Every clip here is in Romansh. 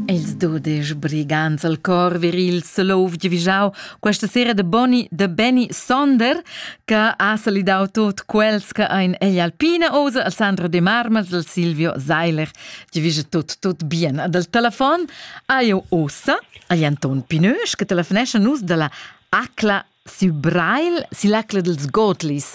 Ils dudesch brigants al cor viril Solov giavüschau questa sera de Boni de Benny Sonder che ha salidau tot quels che ein egl Alpina Ose al Sandro De Marmels al Silvio Seiler giavüscha tot tot bien ad el telefon ha eu ossa agl Anton Pinösch che telefonescha nus dalla Acla sü Breil, sill'acla dels Gotlis.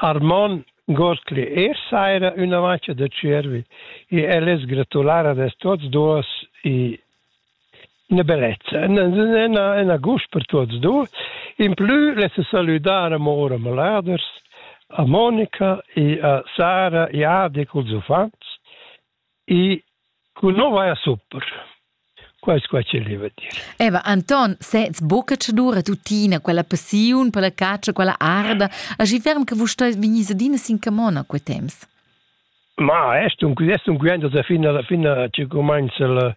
Armon Gostli es saira üna mancia da tschiervi e el es gratular ad els tuots duos e üna bellezza, üna üna gust per tuots duos. Implü less salüdar amor a maladers, a Monica e a Sara e Adi culs uffants E cu no vai a supper. Quais quai che leva dir. Eva Anton, sez buca tschedura tuttina quella passiun per la catscha, quella arda, aschi ferm che vus stai vegnis adina sin camona quei temps. Ma est un est un quint da fin alla fin che cumanza la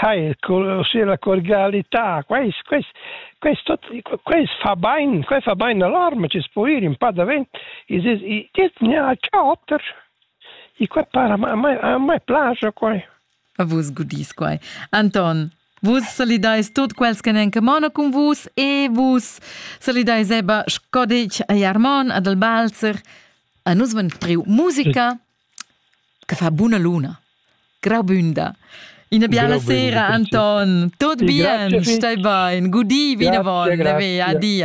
Sai, la cordialità, quest, quest, quest, quest fa bain, quest fa bain all'arma, ci spuir un po' davent. E dice, ne ha cauter. E qua para, a me, a me piace qua. A vus gudis quai. Anton, Vus salidais tot quels che n'en camona cun vus e vus salidais Eba Scodic, a Jarmon, ad Albalzer. A nus ven priu musica. che fa buna luna. Graubünda. Ina biala sera, Anton. Tot bien, stai bain. Gudi vinavon, ve, adia.